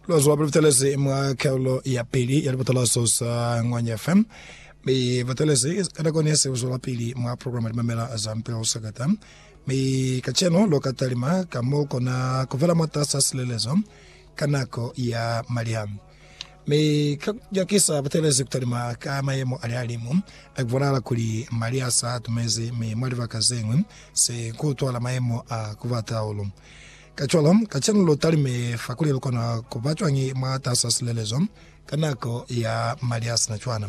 Lwa zwa butelezi mwa karolo ya pili ya libutalazo za Ngwanya FM. Mi butelezi ka nako ne se bu zwelapili mwa programa Limamela za Mpeo Sakata. Mi kacenu lu ka talima ka m'o kona ku vela mwatas'a silelezo ka nako ya maliha. Mi ka ku nyakisa butelezi ku talima ka mayemo a lihalimu, a ku bonahala kuli maliha s'a tumezi mi mwa libaka ze ñwi se ku utwahala mayemo a ku bata hahulu. Kacwalo, kacenu lu talime fa kuli lu kona ku ba cwañi mwatas'a silelezo ka nako ya mali a si na cwana?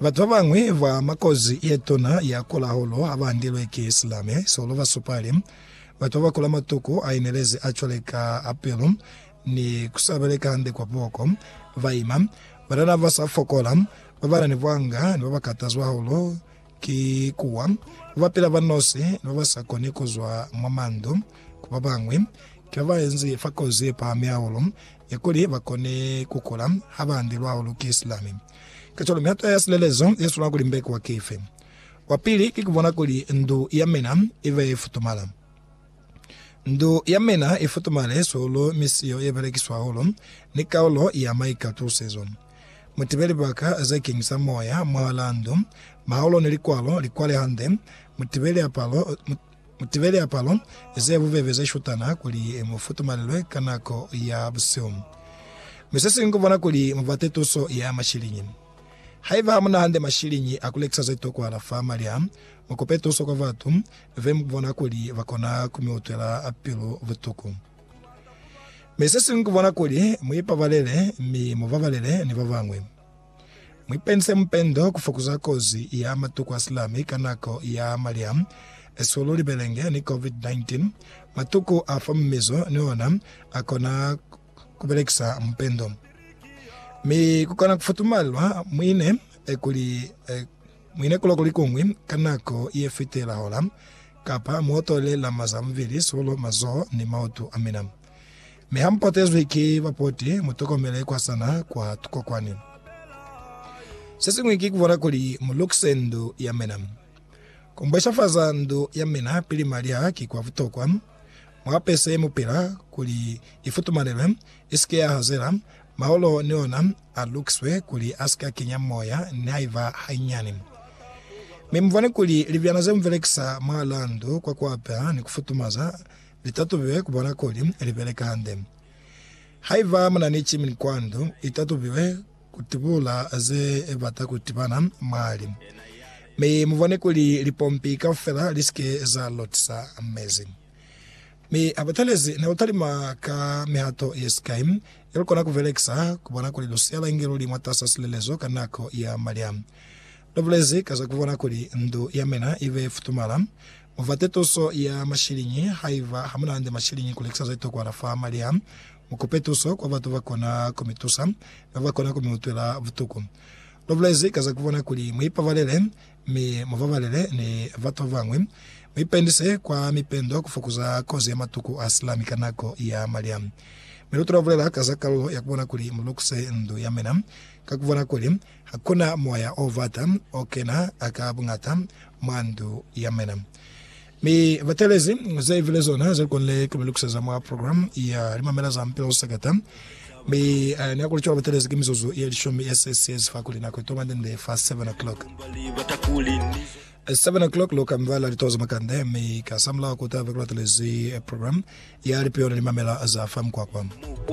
Batu ba bañwi ba mwa kozi ye tuna ya kula hahulu ha ba andilwe ki silame. Sihulu ba supa li, Batu ba ba kula matuku a inelezi a cwale ka a pilu ni ku sa beleka hande kwa buhoko, ba ima, banana ba sa fokola, ba ba na ni bwanga, ni ba ba katazwa hahulu. Ki kuwa, ku bapela ba nosi ni ba ba sa koni ku zwa mwa mandu. Ku ba bañwi, ki ba ba enzi fa kozi ye pahami hahulu ya kuli ba kone ku kula ha ba andelwa hahulu ki silami. Kacwalo, mihato ya silelezo ye swanela ku limbekwa ki ife? Wa pili ki ku bona kuli ndu ya mina i be ye futumala. Ndu ya mina i futumale suulu mi siyo ye belekiswa hahulu ni kaulo ya maikatusizo. Mu tibe libaka ze keñisa moya mwahalaa ndu, mahaulo ni likwalo li kwale hande. Mu tibe liapalo, mu tibe liapalo ze bubebe ze shutana kuli mu futumalelwe ka nako ya busihu. Mi se siñwi ku bona kuli mu bate tuso ya mashiliñi. Haiba ha mu na hande mashiliñi a ku lekisa ze tokwahala fa mali a, mu kope tuso kwa batu Ve mu bona kuli ba kona ku mi utwela pilu butuku. Mi se siñwi ku bona kuli mu ipabalele mi mu babalele ni ba bañwi. Mu ipendise mupendo ku fokuza kozi ya matuku a silami ka nako ya malya, eswe lu libelenge ni COVID-19. Matuku a fa mumizo ni ona a kona ku belekisa mupendo. Mi ku kona ku futumalelwa muine kuli muine kuloko likuñwi ka nako ye fitela hola, kapa mu otole lama za mubili, sulo, mazoho, ni mautu a mina. Mi ha mu potezwi ki bapoti, mu tokomele kwa sana kwa tukokwani. Se siñwi ki ku bona kuli mu lukise ndu ya mina. Ku mbweshafaza ndu ya mina pili mali a ki kwa butokwa. Mu apese mupila kuli i futumalelwe, i si ke ya hazela. Maolo ni ona a lukiswe kuli a si ka kenya moya nihaiba hanyinyani. Mi mu bone kuli libyana ze mu belekisa mwalaa ndu kwa ku apeha ni ku futumaza li tatubiwe ku bona kuli li beleka hande. Haiba mu na ni chimini kwa ndu, i tatubiwe. kutubula ze bata kutibana mwali, mi mubone kuli lipompi kaufela lisike za lotisa mezi. Mi habutelezi nelutalima ka mihato yesikai yelukona kubelekisa kubona kuli lusiyala inge luli mwatasa silelezo ka nako ya malya. Lubulezi ka za kubona kuli ndu yamina ibe futumala. Mubate tuso ya mashiliñi haiba hamunande mashiliñi kulekisa zetokwa fa malya. Mukupe tuso kwa batu bakona kumitusa, babakona kumiutwela butuku. Lubulezi ka za kubona kuli muipabalele mi mubabalele ni batu babañwi. Muipendise kwa mipendo kufokuza kozi ya matuku a silami ka nako ya malya. Mi lutula bulela ka za kalulo ya kubona kuli mulukise ndu ya mina ka kubona kuli hakuna moya obata okena ka buñata mwa ndu ya mina. Mi batelezi ze ibile zona ze konile ku mi lukuseza mwa program ya Limamela za Mupilo Seketa. Mi a ni akuli cwalo batelezi ki mizuzu ye lishumi ye se siyezi fakuli nako itoba ndende fa 7 o'clock. 7 o'clock lu kamvela lituwa za makande, mi kasamulaho ku tabe ku latelezi program ya Lipio ni Limamela za fa Mukwakwa.